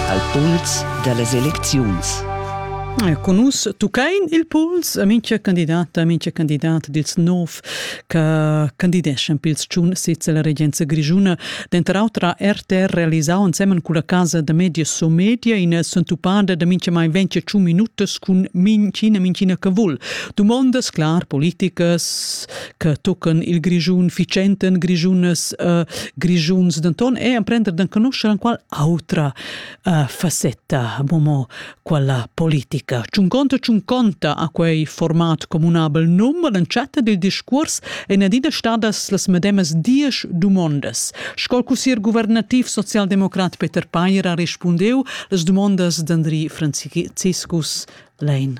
al puls da las elecziuns. Con nus tuccain il puls a mincha candidat a mincha candidat dils nov che candideschan pils tschun sits alla regenza grischuna, denter autra RTR realisau ensemen culla casa da medias Somedia ina sentupada da mincha mai 21 minutas cun minchina minchina che vul. Dumondas clar politicas, che tocan il Grischun ficenten Grischunas uh, Grischuns denton e emprender d'enconoscer qual autra uh, facetta bomo quella politica. Ciunconta ciunconta a quei format comunabel num l'entschatta dil discurs en adina stadas las medemas diesch dumondas. Scol cussir governativ socialdemocrat Peter Payer ha rispundeu las dumondas d'Andri Franciscus Lein.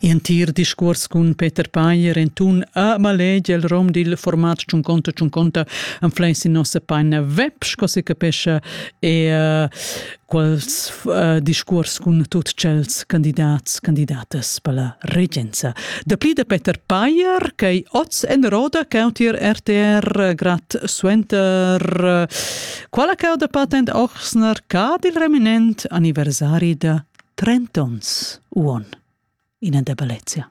Entir discuors cun Peter Payer entun a malegia el rom dil format Tschunconta Tschunconta anfleis in nossa paina web sco se capescha e uh, quals uh, discuors cun tut tschels candidats candidatas per la regenza. Da pli da Peter Payer che oz en roda cautir RTR grad suenter uh, quala cauda patent Ochsner cad il reminent anniversari da trent'ons uon, ina da bellezia.